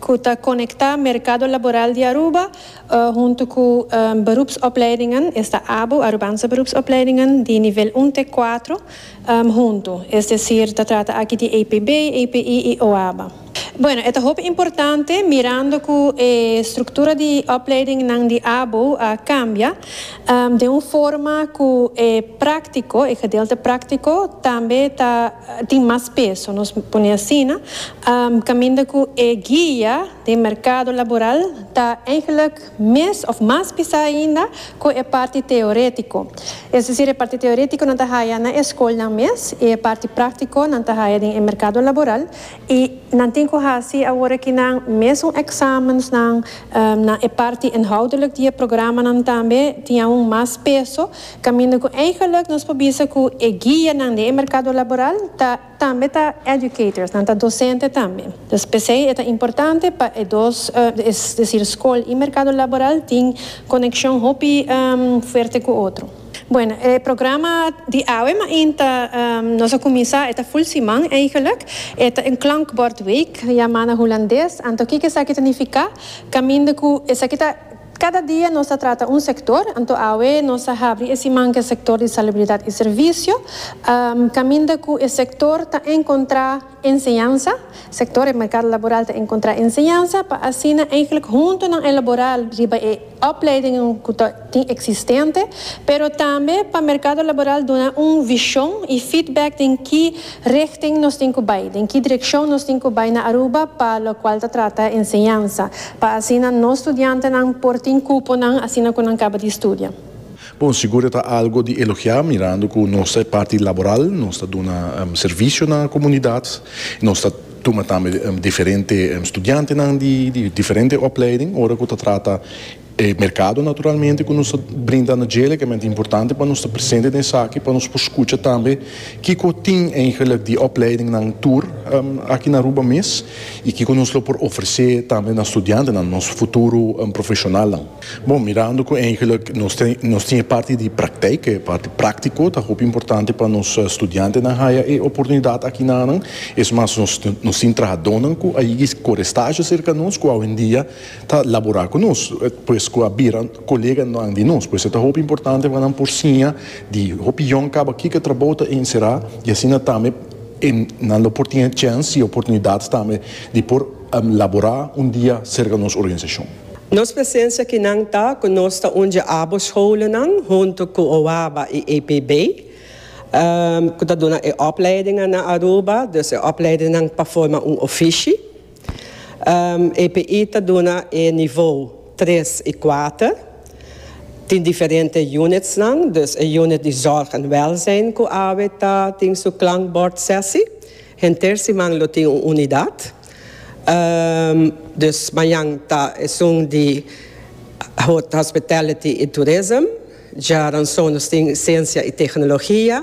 ku ta konektá merkado laboral di Aruba huntu ku berupsopleidingen, esta abo, Arubaanse Berupsopleidingen, di nivel un te kuatro huntu, es desir ta trata aki di APB, API i OABA. Bueno, e ta hopi importante mirando ku e struktura di opleidingnan di abo a kambia den un forma ku e práktiko, e gedeelte práktiko, tambe ta. tin mas peso, nos pone asina, kaminda ku e guia den merkado laboral ta eigenlik mes òf mas pisá ainda ku e parti teoretiko. Es desir e parti teoretiko nan ta haya na e skolnan mes i e parti praktiko nan ta haya den e merkado laboral i nan tin ku hasi awor kinan mes un èksamensnan na e parti inhoudelik di e programanan tambe tin aun mas peso Caminda cu eigenlijk nos por bisa cu e guianan di e mercado laboral ta tambe ta educators, nan ta docente tambe. Dus p'esey e ta importante pa e dos, es decir scol y mercado laboral tin conexion hopi fuerte cu otro. Bueno, e programa di awe mainta nos a cuminsa, e ta full siman eigenlijk, e ta een klankbordweek, jamana hulandes, anto kic esaki ta nifica? Caminda cu esaki ta. Kada dia nos ta trata un sektor, anto awe nos ta habri e siman ku e sektor di salubridat i servisio, kaminda ku e sektor ta enkontrá enseñansa, sektor e merkado laboral ta enkontrá enseñansa pa asina eihglik huntu nan elaborá riba e opleidingen ku ta tin eksistente, pero tambe pa merkado laboral duna un vishon i feedback den ki Richting nos tin cu bay? Den ki direccion nos tin cu bay na Aruba pa locual ta trata enseñansa, pa asina nos studiantenan por tin cuponan asina cu nan caba di studia? Bon, sigur e ta algo di elogia mirando cu nos ta e parti laboral, nos ta duna servicio na comunidad, nos ta tuma tambe diferente studiantenan di diferente opleiding ora cu ta trata E merkado naturalmente ku nos ta brinda na dje legalmente importante pa nos ta presente den esaki pa nos por skucha tambe kiko tin eigenlijk di opleidingnan tur aki na Aruba mes i kiko nos lo por ofresé tambe na studiantenan, nos futuro profeshonalnan. Bon, mirando ku eigenlik nos tin e parti di prakteik, e parti práktiko ta hopi importante pa nos studiantenan haya e oportunidat aki na nan. Es mas nos tin trahadónan ku a yega kore stazio serka nos ku awendia, Ta labora cu nos, pues cu a bira coleganan di nos. Pues e ta hopi importante pa nan por siña di hopi yòn caba kico trabou ta encera y asina tambe e nan lo por tin e chens y oportunidad tambe di por labora un dia cerca nos organizacion. Nos presencia kinan ta cu nos ta undje abo scholennan hunto cu OABA y APB cu ta duna e opleidingan na Aruba, dus e opleidinnan pa forma un ofishi. EPI ta duna e nivou tres i kuater. Tin diferente unitsnan, dus e unit di zòrg en wèlzijn ku awe ta tin su klankbòrdsèsi. Henter siman lo tin un unidat. Dus mañan ta esun di hospitality i tourism. Djaransonos tin siensia i teknologia.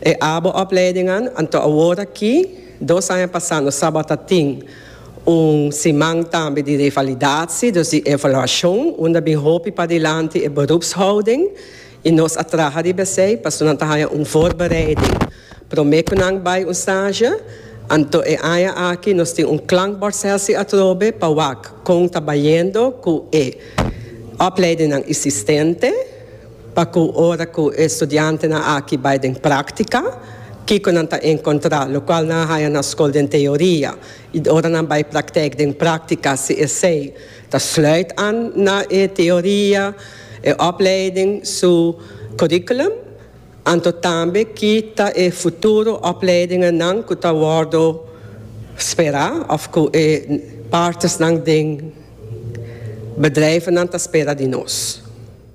E abo opleidingan anto awor aki, dos aña pasá nos tabata tin un siman tambe di revalidatie, dus di evaluashon, unda bin hopi padilanti e berupshouding i nos a traha riba esei pasobra nan ta haña un voorbereiding promé ku nan bai un stage. Anto e aña aki nos tin un klankbordsessie atrobe pa wak kon ta bayendo ku e opleidingnan isistente. Pa cu ora cu e studiantenan aki bay den practica, kico nan ta encontra? Locual nan a haya na scol den teoria y ora nan bay practec den practica si esey ta sluit aan na e teoria, e opleiding su curriculum, anto tambe ki ta e futuro opleidingennan cu ta wordo spera of cu e partersnan den bedrijvennan ta spera di nos?